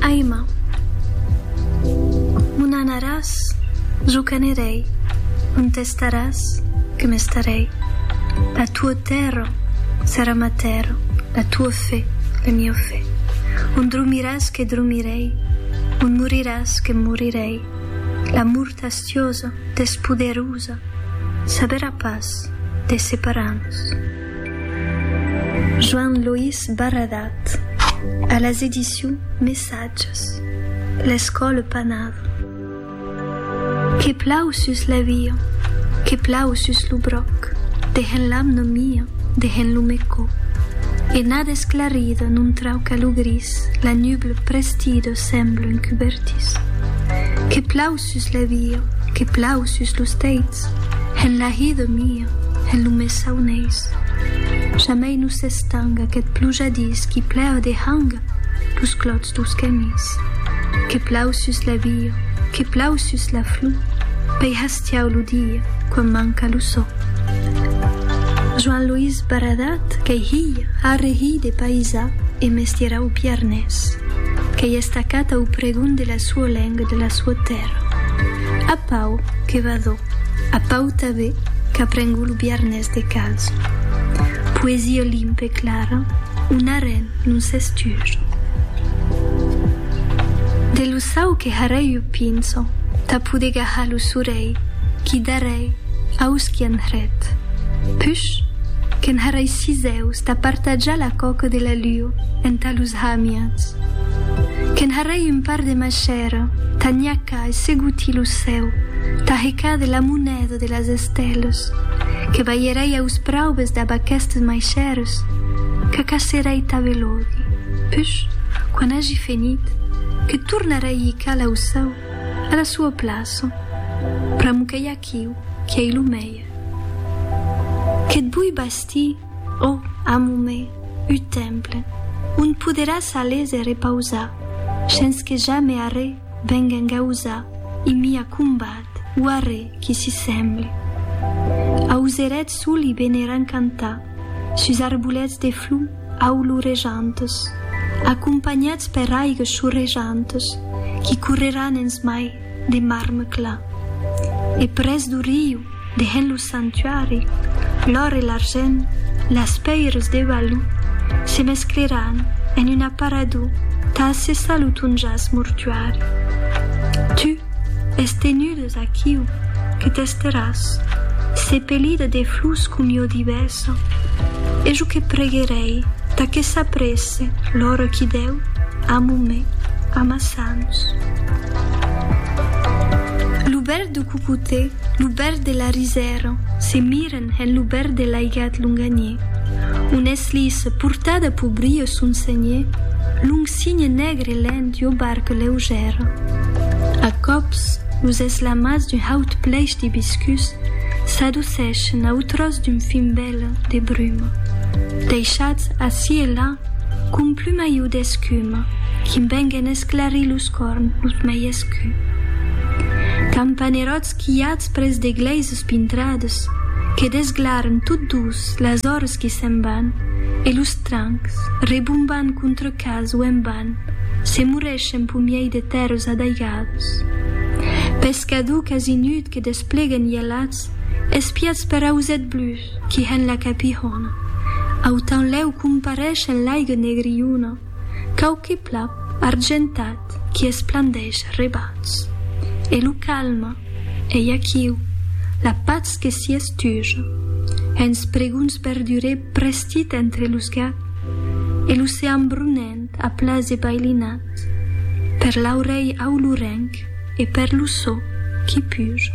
Aima, m'o n'anaràs, jo qu'anirèi, on t'estaràs, que m'estarèi. La tua tèrra serà ma tèrra, la tua fe, la mia fe. On dromiràs que dromirèi, on moriràs que morirèi. La mort astiosa, despoderosa, saberà pas de separar-nos. Joan Loís Barradat a las edicions Messatges, L'Escòla Panada. Que plau sus la via, que plau sus lo bròc, dehen l'amna mia, dehen lo mecò. Ena desclarida non trauca lo gris, la nubla prestida sembla un cubertís. Que plau sus la via, que plau sus lo bròc, dehen l'amna mia, dehen lo mecò. Sus la via que plau sus los teits, hèn la hi de mia, hèn lo mes sauneis. Jamei no s'estanga aquest plujadís qui plèu de hanga los clòts dos camis. Que plau sus la via, que plau sus la flor, pei hastiau lo dia quan manca lo sò. Joan Loís Baradat qu'ei hilh arre hilh de paisà e mestierau biarnés, qu'ei estacat au pregon de la suo lenga, de la sua tèrra. A Pau, que va d'o. A Pau tabé, qu'a prengut lo biarnés de calç. Poesia limpa e clara, un arren non s'estuja. De lo sau que harèi o pinço, tà poder gahar lo sorèi qui darèi aus qui an hret. Push, que'n harèi sis eus tà partajar la coca de la luo entà los hamians. Que'n harèi un Part de ma chèra, ta nhaca e seguti lo cèu, ta heca de la moneda de las estelas, que balherai aus praubes dab aquestes mai chères, qu'acacerai ta velodi, push, quan agi fenit, que tornarai hica lau cèu, a la sua plaça, pr'amo que i aquiu, qui ei lo mèier. Que't bui bastir. Ò, amor me, un temple, on poderàs a léser e pausar, shens que jamè arrè veng engausar i mi acombat o arrè qui s'i semble. Auserèt sol i beneran cantar, sus arbolets de flor aulurejantes, acompanhats per aigas chorrejantes qui correran ens mai. de marme clar. E pres do riu, dehent lo sanctuari, l'òr e l'argent, las pèires de Balou, se mescleràn en un aparador tà assessar lo ton jaç mortuari. Tu, es tenudes aquiu, que t'esteràs, sepelida de flors com jo divèsa, e jo que preguerèi tà que s'apresse l'ora qui dèu, amo me, amassar. Ans. Lo bèl de Cucutè, lo bèl de la Risèra, se miren en lo bèl de l'aigat Longaniè. Un eslis portada pau brio son senhè, long signe negre lent ua barca leugèra. A còps, los eslamats d'un haut plèish d'ibiscus s'adoceschen au tròç d'un fin bèla de bruma, deishats ací e là Qu'un plumaiu d'escuma qui'm venguen esclarir los corn los mei escu. Campaneròts quilhats pres de glèises pintrades que desglarn tot dus las ores qui se'n van e los trancs, rebombant contre cas o en ban, se morreschen p'un miei de tèrres adaigades. Pescaducas i nut que despleguen ielats espiats per auset blus, qui hèn la capihòna. Autan lèu compareish en l'aigue negriuna quauqui plap argentat qui esplandeish rebats. E lo calma, ei aquiu, la patz que s'i estuja. Hèns preguns berdurè prestit entre los gap e l'ocean brunent a plas e bailinat per l'aurelh aulurenc e per lo so qui puja.